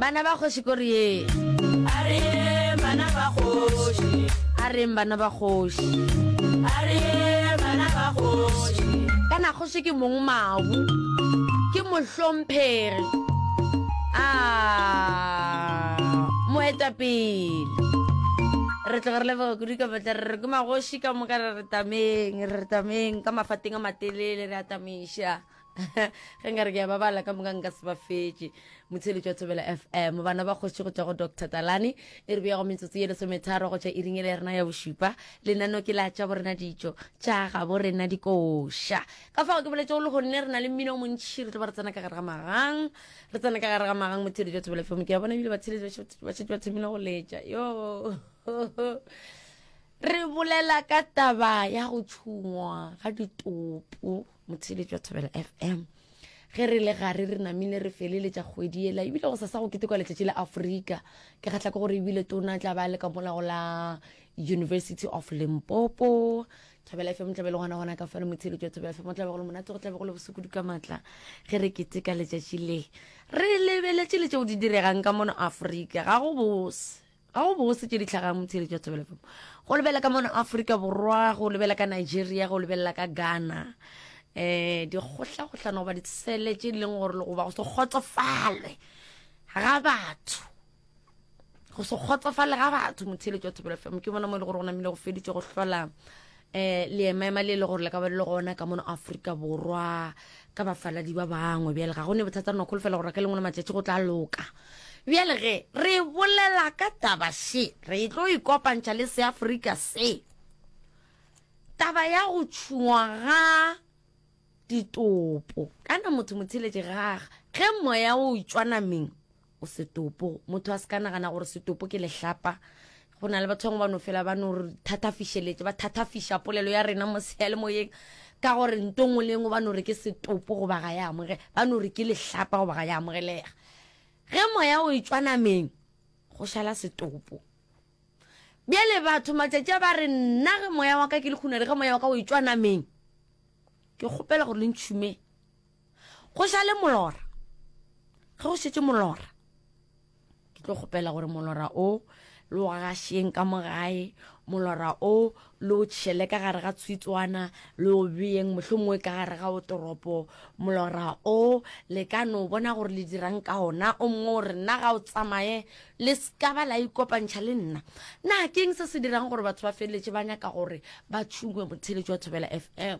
bana ba kgoši kore ye a re bana ba kgoši a reng bana ba kgoši a re bana ba kgoši kana kgoši ke mong mabu ke mohlomphegi a moetapele re tloga re leboga kudu ka batla re re ke magoši ka moka re re tameng re re tameng ka mafateng a matelele re atamiša ge nka re ke ya ba bala ka moka nka se ba fetše motheletši wa thobela fm bana ba kgositše go tšwa go dr talane e re beyago metsotso ye lesometharo go tšwa iringele ya rena ya bošupa lenano ke la tša borena ditšo tša ga borena dikoša ka fago ke boletse go le gonne re na le mmino o montšhi re tlo ba re tsena ka gare ga magang re tsena ka gare ga magang motheletši wa thobela fm ke ya bona ebile batheletši ba šetse ba thomile go letša yo re bolela ka taba ya go tšhungwa ga ditopo motheletši wa thobela fm ge re le gare re namile re feleletša kgwedi ela ebile go sa sa go ketekwa letšatši la aforika ke kgatlha ke gore ebile tona tla ba le ka mola go la university of limpopo thobela fm tlabe le gona gona ka fela motheletši wa thobela fm o tlabe go le monate go tlabe go le bosokudu ka maatla ge re keteka letšatši le re lebeletše le tšeo di diregang ka mono aforika ga go bose Ga go bose tše di tlhagang motheeletši wa Thobela FM. Go lebelela ka mona Afrika Borwa, go lebelela ka Nigeria, go lebelela ka Ghana. Eh dikgohlagohlano goba ditsele tše di leng gore le goba go se kgotsofalwe ga batho go se kgotsofale ga batho motheeletši wa Thobela FM ke bona mo e le gore go namile go feditše go hlola eh leemaema le le gore le ka ba le le gona ka mono aforika borwa ka bafaladi ba bangwe bjale ga go ne bothata nokgolo fela gore ka lengwe la matšatši go tla loka bjale ge re bolela ka taba she re tlo ikopantšha le seaforika se taba ya go tšhungwa ga ditopo kana motho motheletše gaga ge moya o tšwa nameng O setopo. Motho a se ka nagana gore setopo ke lehlapa. Go na le batho bangwe ba no fela ba no re thathafišeletše, ba thathafiša polelo ya rena mo seyalemoyeng ka gore nto nngwe le nngwe ba no re ke setopo goba ga ya amoge, ba no re ke lehlapa goba ga ya amogelega. Ge moya o etšwa nameng, go šala setopo. Bjale batho matšatši a ba re, nna ge moya wa ka ke le kgunere, ge moya wa ka o etšwa nameng, ke kgopela gore le ntšhume. Go šale molora. Ge go šetše molora, ke tlo kgopela gore molora o le o gašeng ka mo gae, molora o le o tšhele ka gare ga tshwitswana, le o beyeng mohlomongwe ka gare ga otoropo. Molora o le ka no bona gore le dirang ka ona. O mongwe o re, Nna ga o tsamaye, le ska ba la ikopantšha le nna. Na keng se se dirang gore batho ba feleletše ba nyaka gore ba tšhungwe motheeletši wa Thobela FM?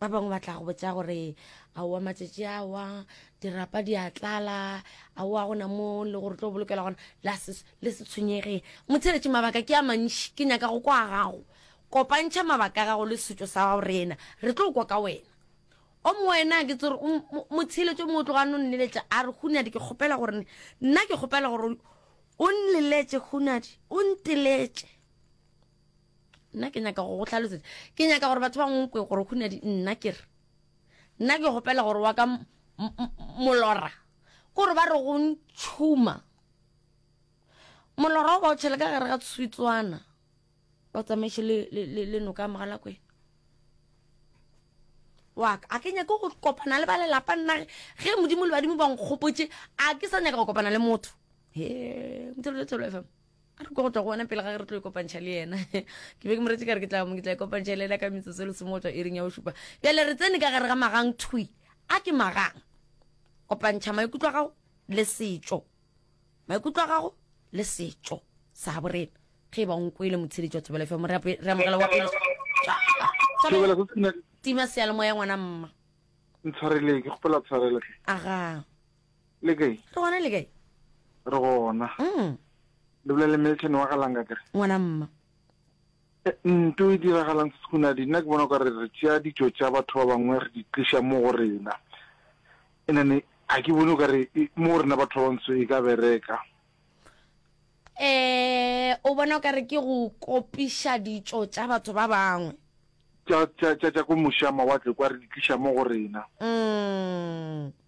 ba bangwe ba tla go botsa gore aowa matšatši awa dirapa di a tlala aowa gona mo le gore tlo bolokela gona le se tshwenyege motheletše mabaka ke a mantši ke nyaka go kwa gago kopantšha mabaka a gago le setšo sa gago rena re tlo kwa ka wena o mo wena ke tsere motheletše mo o tloga no nneletša a re hunadi ke kgopela gore nna ke kgopela gore o nneletse hunadi o nteletše nna ke nyaka go go tlhalosetsa ke nyaka gore batho ba ngwe gore go nadi nna ke re nna ke gopela gore wa ka molora kore ba re go ntšhuma molora o ba o tšhele ka gare ga tshwitswana ba o tsamaiše le noka mogala kwena waka a ke nyake go kopana le ba lelapa nna ge modimo le badimo ba nkgopotše a ke sa nyaka go kopana le motho he motho le tshelo fm a re kwa go tla go wena pele ga ge re tlo ikopantšha le yena ke be ke moretše ka re ke tla mo ke tla ikopantšha le yena ka metsotso le somo go tswa ering ya go šupa bjale re tsene ka gare ga magang thwi a ke magang kopantšha maikutlo a gago le setšo maikutlo a gago le setšo sa borena ge e ba nkwele motsheditši wa thobela fa mo re amogela wa pele tima seyalemoya ngwana mma ntshwareleng ke kgopela tshwarelo aga le kae re gona le kae re gona mm. le bula le milton wa galanga kere ngwana mma eh, nto e diragalang se segona di nna ke bona ka re re tšea ditso tša batho ba bangwe re di tliša mo go rena enane ga ke bone ka re e, mo rena batho ba bantsho e ka bereka eh o bona ka re ke go kopiša ditso tša batho ba bangwe tša ko moša mawatle kwa re di tliša mo go rena mm.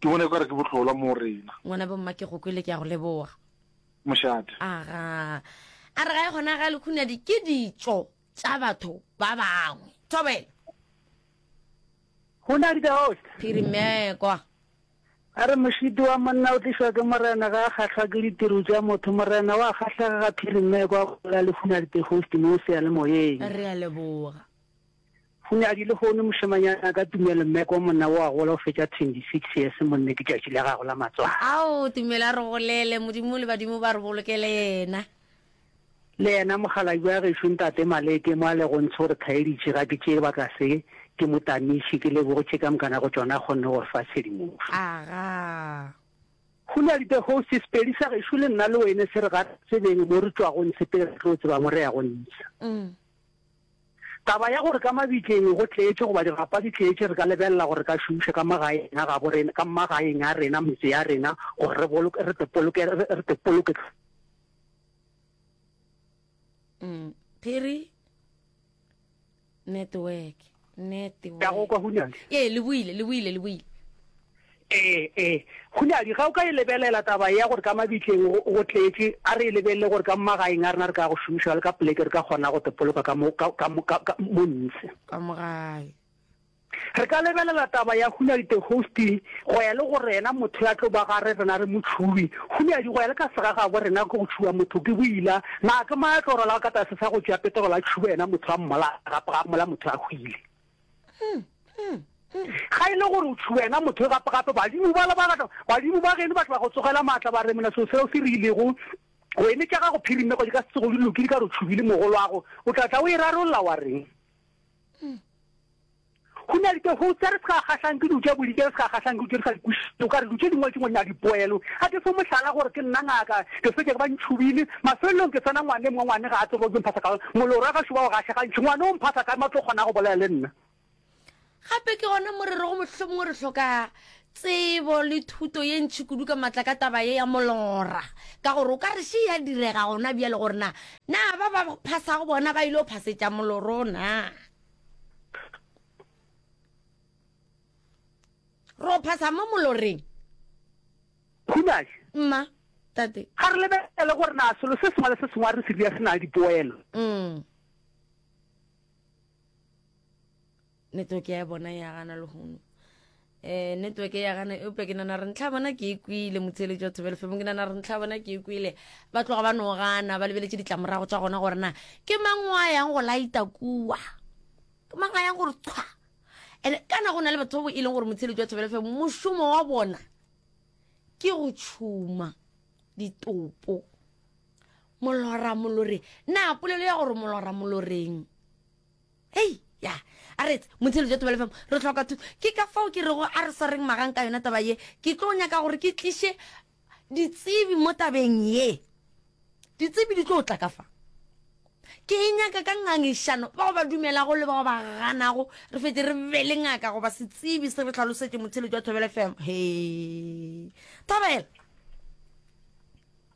Ke bona ekare ke bohlolwa mo rena. Ngwana bomma ke go kwele ke ya go leboga. Mošate. Aga. A re ga e gona ga lekhunadi ke ditso tsa batho ba bangwe. Thobela. Go na di ka host. Phirimekwa. A re mošidi wa monna o tlišwa ke morena ga a kgahlwa ke ditiro tša motho. Morena wa kgahlega ga Phirimekwa a bolela le Hunadi the host mo seyalemoyeng. Re a leboga. O ne a di lehono mošemanyana ka tumelo mme ko monna wo a gola o fetša 26 years monne ke tšatši la gago la matswalo. Ao tumelo a re golele modimo le badimo ba re bolokele yena. Le yena mokgalabje wa gešo ntate Malete mo a lego ntsho re khaeditše ga ke tšee baka se ke mo tamiše ke leboge tše ka mokana go tšona a kgonne go re fa tshedimošo. Agaa. Go ne a di the host Sepedi sa gešo le nna le wene se re ga re tsebeng mo re tšwago ntshe pele re tlo tseba mo re yago ntsha. Taba ya gore ka mabitleng go tletše goba dirapa di tletše re ka lebelela gore re ka šomiša ka magaeng a gabo rena, ka magaeng a rena, metse ya rena gore re boloke, re te poloke, re te poloke. Mm. Phiri network. Nnete wa. Ka go kwa Hunadi. Ee, le buile, le buile, le buile. Ee, ee. Hunadi, ga o ka e lebelela taba ya gore ka mabitleng go, go tletše, a re e lebelele gore ka mmagaeng a rena re ka go šomiša le ka poleke re ka kgona go tepoloka ka mo, ka, ka, ka, ka mo ntse. Ka mo gae. Re ka lebelela taba ya Hunadi the hosting, go ya le gore yena motho ya tlo ba gare rena re motšhubi, Gomme a di goya le ka sega ga bo rena ke go tšhuba motho ke boila. Na ke mang a tlo rwalago ka tlase sa go tšea petrol a tšhuba yena motho a mmola gape ga mmola motho a hwile? Ga e le gore o tšhuba yena motho gape gape badimo bala ba gata badimo ba geno ba tla ba go tsogela maatla ba re mona seo seo se re ilego go eme tša gago phirimego di ka se tsogo di lokile ka re o tšhubile mogolwago o tla tla o e rarolla wa reng? Go na le tše go tse re se ka kgahlang ke di tše bodi, tše re se ka kgahlang ke di re sa di kwešiše. O ka re di tše dingwe tše ngwe di na le dipoelo. A ke fe mohlala gore ke nna ngaka, ke fetša ke ba ntšhubile. Mafelelong ke tsena ngwane mongwe, ngwane ga a tsebe gore ke mphasa ka'ng. Mollo o ra gašo wa go gaša gantši. Ngwane o mphasa ka'ng? Ba tlo kgona go bolela le nna. Gape ke gona mo re rego mohlomongwe re hloka tsebo le thuto ye ntši kudu ka matla ka taba ye ya molora. Ka gore o ka re še ya direga gona bjale gore na, na ba ba phasago bona ba ile go phasetša moloro na? ro phasa mo moloreng khunashe mma tate ga re lebelele gore na selo se sengwe le se sengwe a re se dira se na le dipoelo mm. network ya bona ya gana lehono um network ya gana eupša ke nana re ntlha bona ke e kwile motheletši wa thobelo femo ke nana re ntlha bona ke e kwile ba tloga ba no gana ba lebeletše ditlamorago tša gona gore na ke mang wa yang go laeta kua ke mang a yang gore tshwa and kana go na le batho ba bo e leng gore motheletši wa thobelo femo mošomo wa bona ke go tšhuma ditopo molora molore na polelo ya gore molora moloreng Hei, ya, a re etse, Mothello ja Tebelefemo, re hloka thuso. Ke ka fao ke rego a re swareng magang ka yona taba ye. Ke tlo nyaka gore ke tliše ditsebi mo tabeng ye. Ditsebi di tlo tla ka fa. Ke e nyaka ka ngangišano, bao ba dumelago le bao ba ganago, re fetše re be le ngaka goba setsebi se re hlalosetše Mothello ja Tebelefemo. Hei, Thabela!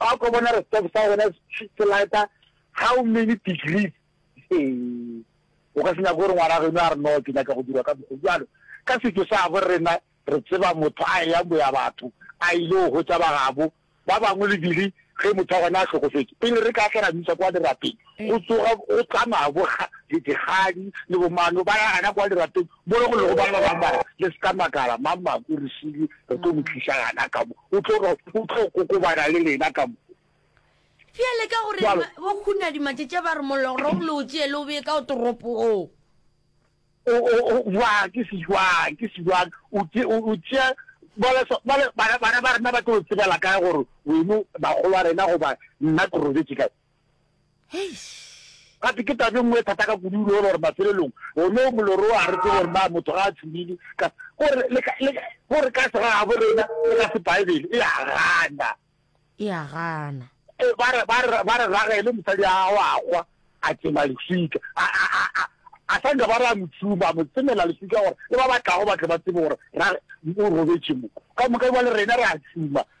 Wa kwa bona re stop sa gona se lighter how many degrees ee o ka se nyaka gore ngwana geno a re no ke nyaka go dirwa ka mokgo jalo ka setso sa bo rena re tseba motho a ya boya batho a ile go hotsa bagabo ba bangwe le dire ge motho wa gona a hlokofetse pele re ka tla ra misa kwa dirapeng Go tsoga go tla mabo ga Didikgadi le Bomano ba ya gana kwa lirapeng mo re go lego ba ba bang ba re, Le se ka makala, Mammako re šele re tlo mo tliša gana ka mo, o tlo o tlo kokobana le lena ka mo. Bjale ka gore bo Khunadi Matšetše ba re molora o lo o tšee le o bee ka go toropo o. O o o jwang ke se jwang ke se jwang o tše o o tšea bale so bale bana bana ba rena ba tlo tsebela kae gore weno bagolo a rena goba nna ke robetše kae gate ke tabe nngwe e thata ka kudu ulo gore mafelelong one o moloro o a re tsebo gore na motho ga a tshumile gore ka sega ga bo rena le ka se baebele e a gana e a gana e, ba re ragele mosadi a gago a kgwa a tsema leswika a sa nka ba re a motshuma a mo tsemela leswika gore le ba batlago batle ba tsebe gore o robetse mo ka moka jale rena re a tshuma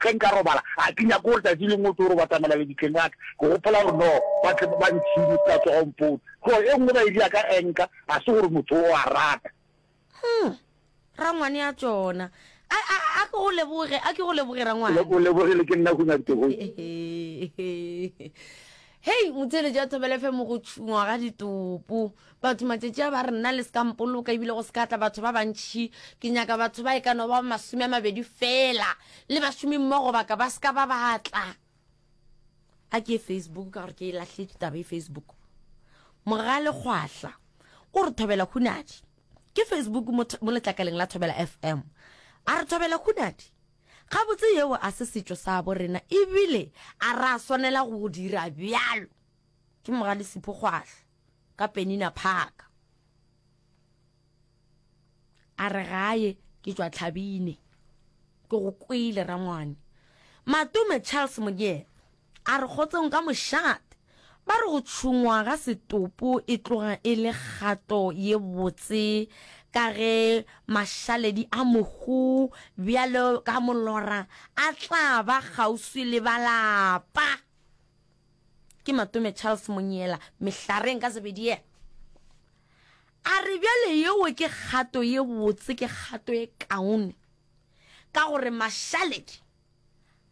Ge nka robala, ga ke nyake gore tšatši lengwe o tlo re batamela lebitleng la ka. Ke gopola gore no ba tle ba ntšhine se ka tsoga o mpone. Tlo e nngwe ba ile ya ka enka, ga se gore motho o a rata. Huh, rangwane ya tšona. A, a, a ke go leboge, a ke go leboge rangwane. O lebogile ke nna hunya ditogoe. Hei, motheletši ya Thobela FM go tšhungwa ga ditopo. Batho matšatši a ba re, Nna le se ka mpoloka, e bile go se ka tla batho ba bantši. Ke nyaka batho ba e ka no ba masome a mabedi feela, le bašomimmogo ba ka ba se ka ba ba tla. A ke ye Facebook, ka gore ke e lahletše taba e Facebook. Mogalekgwahla o re thobela hunadi ke Facebook mo letlakaleng la Thobela FM. A re thobela hunadi gabotse yeo a se setšo sa bo rena ebile a ra swanela go dira bjalo ke mogale sepho kgwahla ka penina phaka a re gaye ke tšwa tlhabine ke go kwele rangwane matume charles monyela a re kgotsong ka mošate ba re go tšhungwa ga setopo e tloga e le kgato ye botse ka ge mašaledi a mohu bjalo ka molora a tla ba kgauswi le balapa Ke Matome Charles Monyela, Mehlareng ka Zebediea. A re bjale yeo ke kgato ye botse, ke kgato e kaone, ka gore mašaledi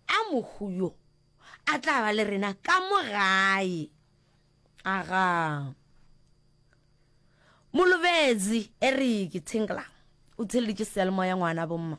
a mohu yo a tla ba le rena ka mo gae. Aga. Molobetsi Eric Tshengelang o theleditše seyalemoya ngwana bomma.